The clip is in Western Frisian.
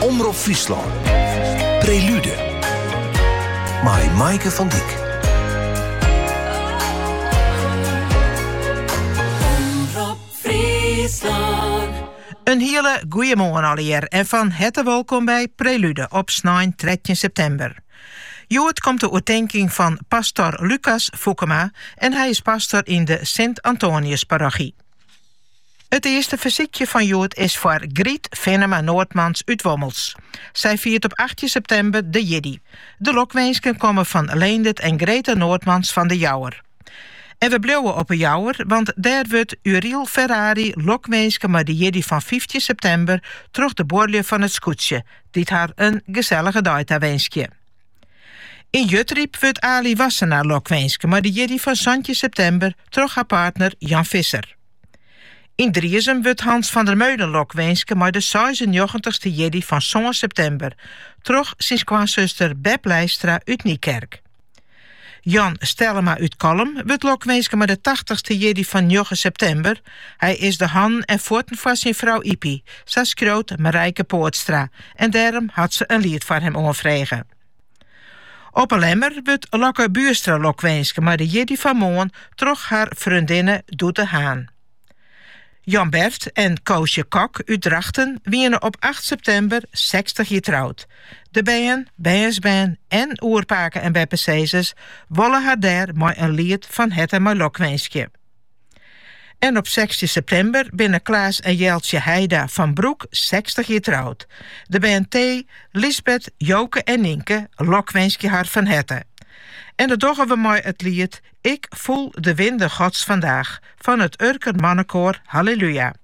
Omrop Fryslân. Prelude. Mei Maaike van Dijk. In hiele goeie moarn allegear en fan herte welkom by Prelude op snein 13 septimber. Hjoed komt de oertinking fan pastor Lukas Foekema en hy is pastor yn de Sint-Antoniusparochy. It earste fersykje fan hjoed is foar Griet Finnema-Noordmans út Wommels. Sy fiert op achttjin septimber de jiddei. De lokwinsken komme fan Leendert en Greta Noordmans fan De Jouwer. En we bliuwe op 'e Jouwer, want dêr wurdt Uriel Ferrari lokwinske mei de jierdei fan fyftjin septimber troch de buorlju fan It Skûtsje, dy't har in gesellige dei tawinskje. Yn Jutryp wurdt Aly Wassenaar lokwinske mei de jierdei fan santjin septimber troch har partner Jan Visser. Yn Driezum wurdt Hans van der Meulen lokwinske mei de seisennjoggentichste jierdei fan sân septimber troch syn skoansuster Beb Leistra út Nykerk. Jan Stellema út Kollum wurdt lokwinske mei de tachtichste jierdei fan njoggen septimber, hy is de hannen en fuotten foar syn frou Ypie, sa skriuwt Marijke Poortstra en dêrom hat se in liet foar him oanfrege. Op 'e Lemmer wurdt Lokke Buurstra lokwinske mei de jierdei fan moarn troch har freondinne Doete Haan. Jan Bert en Koosje Kok út Drachten wiene op acht septimber sechstich jier troud. De bern, bernsbern en oerpake- en beppesizzers wolle har dêr mei in liet fan herte mei lokwinskje. En op sechstjin septimber binne Klaas en Jeltsje Heida fan Broek sechstich jier troud. De bern Thé, Lisbeth, Joke en Nynke lokwinskje har fan herte. En dat dogge we mei it liet Ik voel de winden Gods vandaag fan it Urker Mannekoar Halleluja.